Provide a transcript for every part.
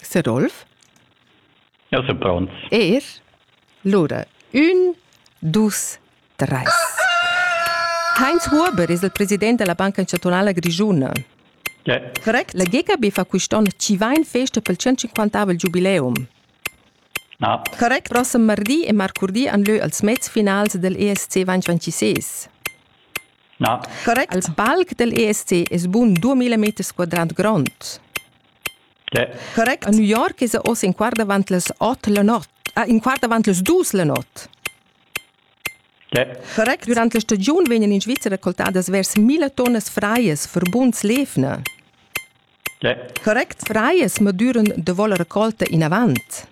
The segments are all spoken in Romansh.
Sedolf? Eu sun pronts. Er lura ün, dus, trais. Heinz Huber es il president da la Banca Chantunala Grischuna. Yeah. Correct? La GKB fa quist'on chi va in festa pel 150avel giubileum. Ah. Correct? Prossem mardi e marcurdi han lö als mezfinals del ESC 2026. Correct. Al palc del ESC es bun 2000 meters quadrat grond. Yeah. Correct. A New York es oz in quart davant las 8 la not. Ah, in quart davant las 2 la not. Yeah. Correct. Durante la stagiun vegnan in Svizra raccoltadas vers 1000 tonnas fraias für buns Lefne. Yeah. Correct. Fraias madüran da voler raccolta in avant.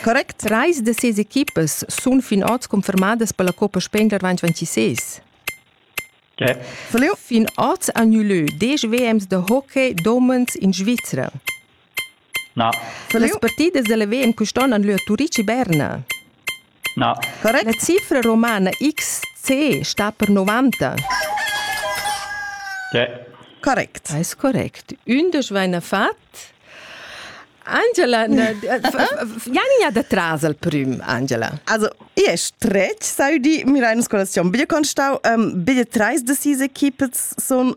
Correct trais da ses equipas sun fin oz confermadas per la Coppa Spender 2026. Fin oz han nus lö desch WMs da hockey domens in Svizra. Las partidas da la WM quest'on han lö a Turitg e Berna. La cifra romana XC sta per 90. Correct. Eis correct. Ündisch vaina fat. Angela, Janina da tras al prüm, Angela. Also, i è stretg, sai di, mir eine Skolazion. Bitte kannst du, ähm, bitte treis de diese Kippets son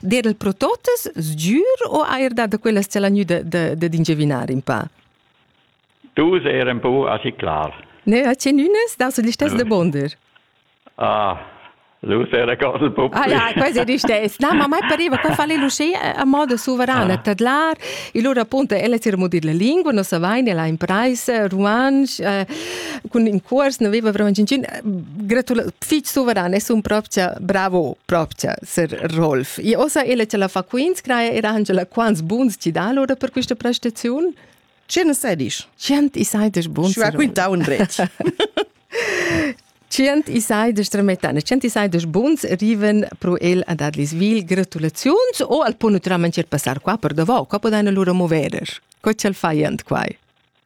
Dedel pro totas sgür o eir da quellas c'el ha gnü d'ingiavinar in pa? Dus eran un po aschi clar. Ne, a cenunas da sul listess de Bonder. Ah, Lus era cosa un po. Ah, ja, quasi ristess. Na, ma mai pareva, qua fa lei l'usce a modo suverana, ah. tadlar, e loro appunto, ella si remodir la lingua, non savain, ella ha imprais ruanch, eh, cun in cuors, non aveva vraiment gingin, gratula, fich suverana, è un propria, bravo, propria, Sir Rolf. E osa ella ce la fa quins, craia era Angela quants buns ci da lora per questa prestazione? Cien sedisch. Cient i seidesch buns. Și raquinta un dret. Cient i seidesch tremetane, cient i seidesch buns riven pro el a dadlis vil gratulaziuns o al pun naturalmente passar qua per davau, qua podane lura moverer. Co c'el faiant quai?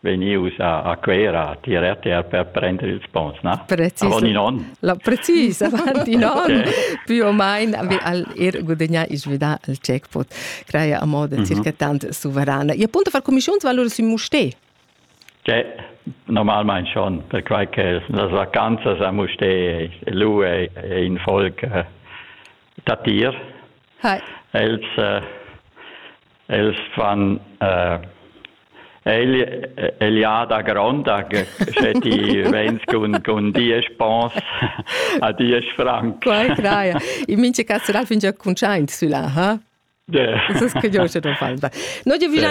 vegnius a, a Cuera a tier RTR per prender ils ponns, na? Precis. Avon in onn. La, precis, avant in onn, okay. più o meno, al er gudagnare e svidare il jackpot, creare a modo mhm. circa tant sovrana. E appunto far commissiuns valore sui mustè. Cioè, normalmente schon, perquai che las vacanzas a Mustè, lui è, è in folk eh, da tir. Hi. Els eh, Els fan äh, Eliada gronda, sche ti vens cun, cun diesch pons a diesch franc. Quai traia. In mince cazzeral finge cuntschaint sulla, ha? Ja. Das ist kein Deutscher, der Fall war. Nur die Villa